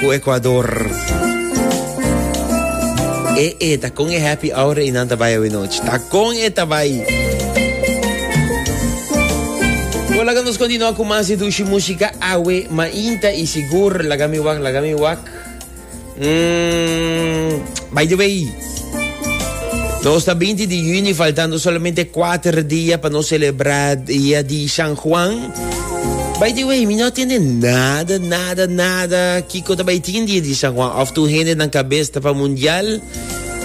ku Ekuador. E e ta kon e happy hour i nan ta bai awe nochi. Ta kon e ta bai. Bo laga nos kontinua ku mas di dushi musika awe mainta i sigur laga mi wak laga mi wak. Mm, by the way, Nos ta 20 di juni, faltando solamente 4 dia pa nos celebra dia di San Juan. By the way, mi no tiene nada, nada, nada. Kiko ta by tin dia di San Juan. Of tu hende nan cabeza ta pa mundial.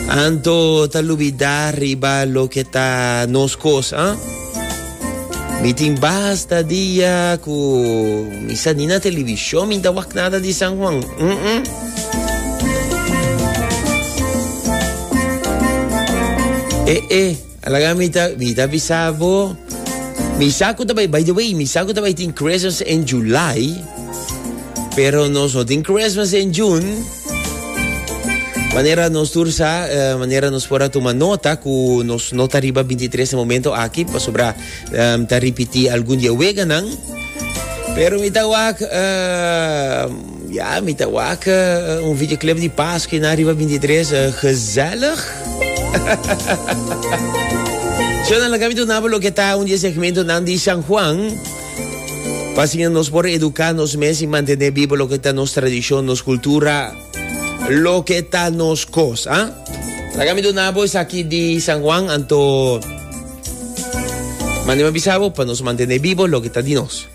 Anto ta lubida riba lo que ta nos cos, ah? Mi tin basta dia ku mi sa ni na televishon mi ta wak nada di San Juan. Mm -mm. Eh, eh, alaga mi ta, mi ta bisabo. Mi saco também, by the way, mi saco também tem Christmas in July. Pero nós não tem Christmas in June. Manera nos tur sa, eh, manera nos por a tuma nota cu nos no ta riba 23 na momento aki, pasobra em, ta repeti algun dia weganan. Pero mi ta wak, eh, ja, mi ta wak eh, un videoclip di Pascua na riba 23, eh, gezellig. Zo dan la kami tu nabo lo ke ta un di segmento nan di San Juan. Pasinja nos por eduká nos mes i mantené biba loke ta nos tradishon, nos kultura, loke ta nos kos. A Laga mi duna bo esaki di San Juan, anto manda mi a bisa bo pa nos mantené biba loke ta di nos.